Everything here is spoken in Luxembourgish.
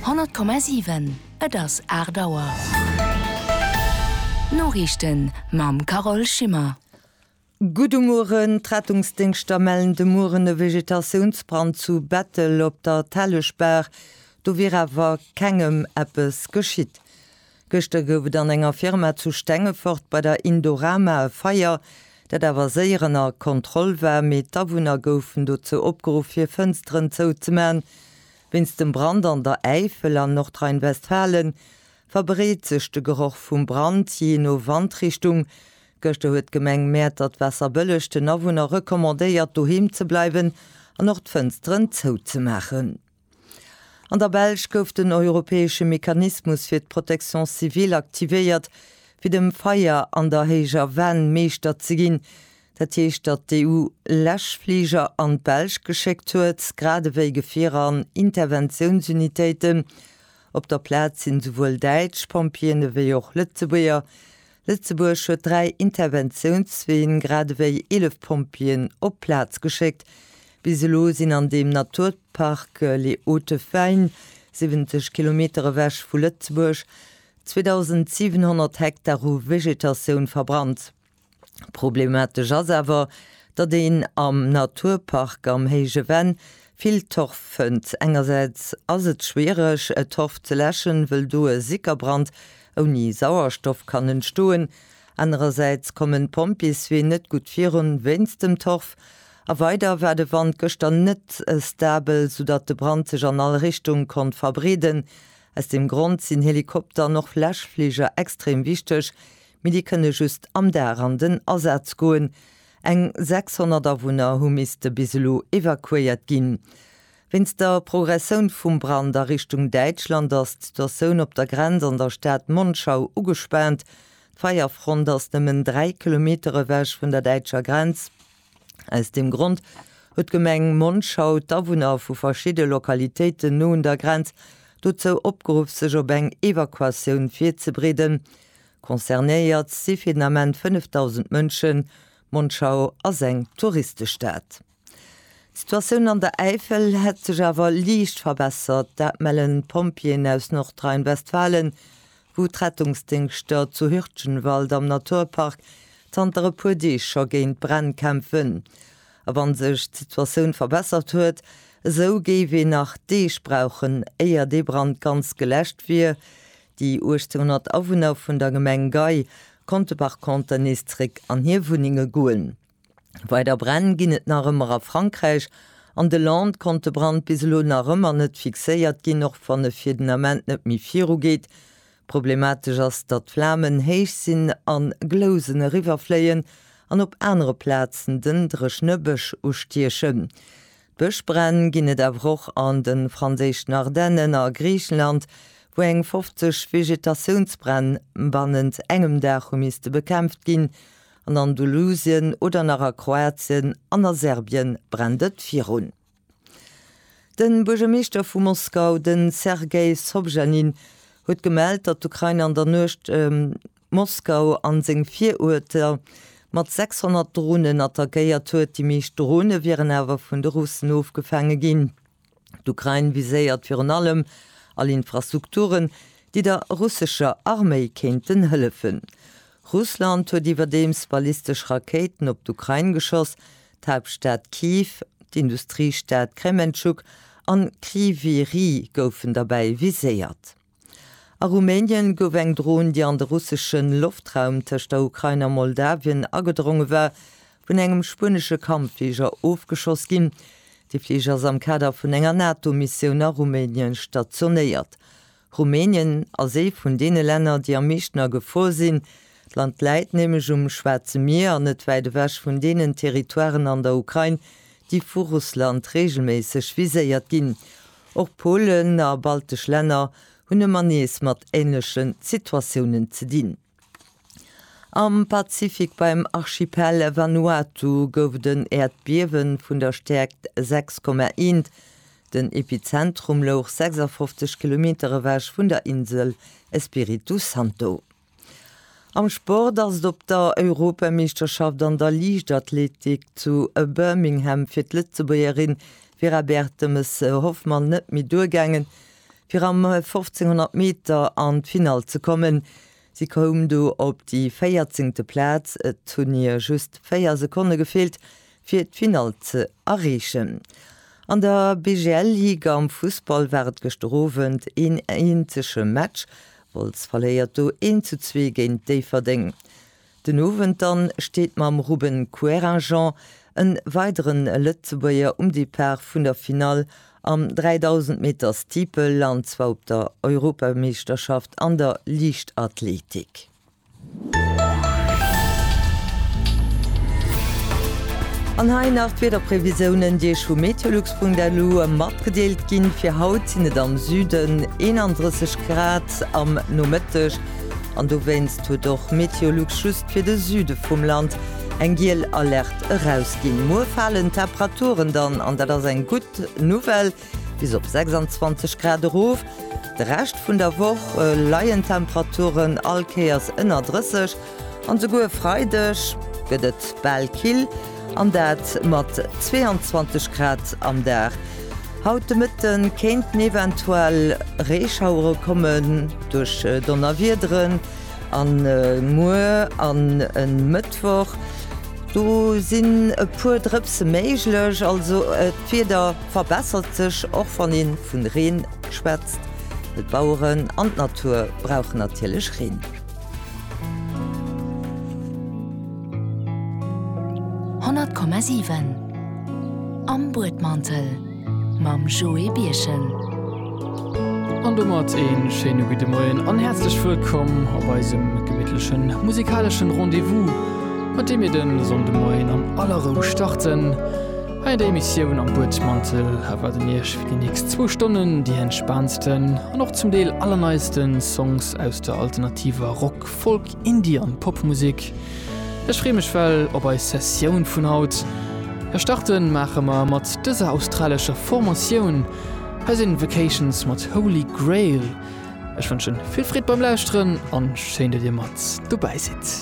100,7 Et ass 8 Auer. D'Noriichten mam Carole Schimmer. Gudde Mueren, D'Rettungsdéngschter mellen de Mueren e Vegetatiounsbrand zu Bettel op der Telleschbaach. Do wier awer kengem eppes geschitt. Gëschter gouf et an enger Firma zu Stengefort bei der Indorama e Feier, dat awer séier ënner Kontroll war, mee d'Awunner goufen dozou opgeruff hir Fënsteren zouzemaachen. Wéinst dem Brand an der Äifel an Nordrhein-Westfalen verbreet sech de Geroch vum Brand jee no Wandrichtung. Gëschter huet d'Gemeng Mäertert-Waasserbëlleg den Awunner recommandéiert doheem ze bleiwen an och d'Fënsteren zouzemaachen. An der Belsch gouf den europäesche Mechanismus fir d'Protection civile aktivéiert, fir dem Feier an der héijer Venn Meeschter ze ginn. Dat heescht, datt d'EU Läschfliger an d'Belsch geschéckt huet, grad ewéi Gefierer an Interventiounsunitéiten. Op der Plaz sinn esouwuel däitsch Pompjeeën ewéi och Lëtzebuerger Lëtzebuerg huet dräi Interventiounsween, grad ewéi 11 Pompjeeën op d'Plaz geschéckt. Bis elo sinn an deem Naturpark Les Hautes Fagnes, 70 Kilometer ewech vu Lëtzebuerg, 2.700 Hektar u Vegetatioun verbrannt. Problematesch ass awer, datt een am Naturpark am Héije Venn Vill Torf fënnt. Engersäits ass et schwiereg Torf ze läschen, wëll do e Sickerbrand ouni Sauerstoff kann entstoen. Anerersäits kommen d'Pompjeeswee net gutt virun wéinst dem Torf. A weider war de Wand gëschter net stabel, soudatt de Brand sech an all Richtung konnt verbreeden. Aus deem Grond sinn Helikopter an och Läschfliger extrem wichteg, mee déi kënne just am Dag an den Asaz goen. Eng 600 Awunner hu misste bis elo evakuéiert ginn. Wéinst der Progressoun vum Brand a Richtung Däitschland ass d'Situatioun op der Grenz an der Stad Monschau ugespaant. D'Feierfront ass nëmmen 3 Kilometer ewech vun der däitscher Grenz. Aus deem Grond huet d'Gemeng Monschau d'Awunner vu verschidde Lokalitéiten no un der Grenz dozou opgeruff sech op eng Evakuatioun virzebereeden. Concernéiert si fir den Ament 5.000 Mënschen. Monschau ass eng Touristestad. D'Situatioun an der Äifel hätt sech awer liicht verbessert. Dat mellen d'Pompjeeën aus Nordrhein-Westfalen, wou d'Rettungsdéngschter zu Hürtgenwald am Naturpark zanter e puer Deeg scho géint Bränn kämpfen. A wann sech d'Situatioun verbessert huet, esou géif een nach Deeg brauchen, éier dee Brand ganz geläscht wier, Déi 1800 Awunner vun der Gemeng Gei konnte par conter nees zréck an hir Wunnenge goen. Weider Bränn ginn et nach ëmmer a Frankräich. An de Landes konnt de Brand bis elo nach ëmmer net fixéiert ginn, och wann e fir den Ament net méi virugeet. Problematesch ass, datt d'Flamen héich sinn, a Glousen eriwwerfléien an op anere Plazen den dréchne Bësch ustiechen. Bëschbränn ginn et awer och an de franséischen Ardennen a Griichenland, wou eng 50 Vegetatiounsbränn bannent engem Dag hu misste bekämpft ginn. An Andalusien oder nach a Kroatien an a Serbien brennt et virun. De Buergermeeschter vu Moskau, de Sergei Sobjanin, huet gemellt, datt d'Ukrain an der Nuecht. Moskau an seng Viruerter mat 600 Dronen attackéiert huet. Déi meescht Drone wieren awer vun de Russen ofgefaange ginn. D'Ukrain viséiert virun allem all Infrastrukturen, déi der russescher Arméi kéinten hëllefen. Russland huet iwwerdeems ballistesch Rakéiten op d'Ukrain geschoss, d'Haaptstad Kyiv, d'Industriestad Krementschuk an Kryvyi Rih goufen derbäi viséiert. A Rumänien gouf eng Dron, déi an de russesche Loftraum tëscht der Ukrain a Moldawien agedronge war, vun engem spuenesche Kampffliger ofgeschoss ginn. De Fliger ass am Kader vun enger NATO-Missioun a Rumänien stationéiert. Rumänien ass ee vun deene Länner, déi am meeschten a Gefor sinn. D'Land läit nämlech um Schwaarze Mier an net wäit ewech vun deenen Territoiren an der Ukrain, déi vu Russland reegelméisseg viséiert ginn. Och Polen a baltesch Länner hunn ëmmer nees mat änleche Situatiounen ze dinn. Am Pazifik beim Archipel Vanuatu gouf et en Äerdbiewe vun der Stäerkt 6,1. Den Epizentrum louch 56 Kilometer ewech vun der Insel Espiritu Santo. Am Sport ass et op der Europameeschterschaft an der Liichtathletik zu Birmingham fir d'Lëtzebuergerin Vera Bertemes Hoffmann net méi duergaangen, fir am 1500 Meter an d'Finall ze kommen. Si koum do op déi véierzéngte Plaz. Et hunn hir just véier Sekonne gefeelt, fir d'Finall ze erreechen. An der BGL-Ligue am Fussball war et gëschter Owend een eenzege Match, Wolz verléiert do 1 zu 2 géint Déifferdeng. Den Owend dann steet mam Ruben Querinjean en weidere Lëtzebuerger um Depart vun der Finall am 3000 Meter Steeple an zwar op der Europameeschterschaft an der Liichtathletik. An hei nach d'Wiederprevisionen, déi Iech vu Meteolux.lu matgedeelt ginn. Fir haut sinn et am Süden 31 Grad am Nomëtteg an dowéinst huet och Meteolux just fir de Süde vum Land eng giel Alerte erausginn. Muer falen d'Temperaturen dann an dat ass eng gutt Nouvelle. Bis op 26 Grad erof. De Rescht vun der Woch leien d'Temperaturen all Kéiers ënner 30, an esouguer e Freideg gëtt et bal kill, an dat mat 22 Grad am Dag. Haut de Mëtte kéinten eventuell Reeschauere kommen duerch Donnerwiederen, a muer an e Mëttwoch do sinn e puer Drëpse méiglech, also d'Wieder. Verbessert sech, och wann een vun Reen schwätzt, well d'Baueren an d'Natur brauchen natierlech Reen. Honnert Komma siwen Am Buedmantel mam Joé Birchen. An domat een schéine gudde Moien an häerzlech wëllkomm op eisem gemittlechen musikaleschen Rendez-vous, mat deem mir den Sonndemoien an aller Rou starten. Hei an der Emissioun Am Buedmantel erwaarden Iech fir déi nächst zwou Stonnen déi entspaantsten an och zum Deel allerneiste Songs aus der alternativer Rock-, Folk-, Indie an Popmusek. Ech free mech well op eis Sessioun vun haut. E Starte maache mer mat dëser australescher Formatioun. Hei sinn Vacations mat Holy Grail. Ech wënschen vill Freed beim Lauschteren an schéin dat Dir mat dobäi sidd.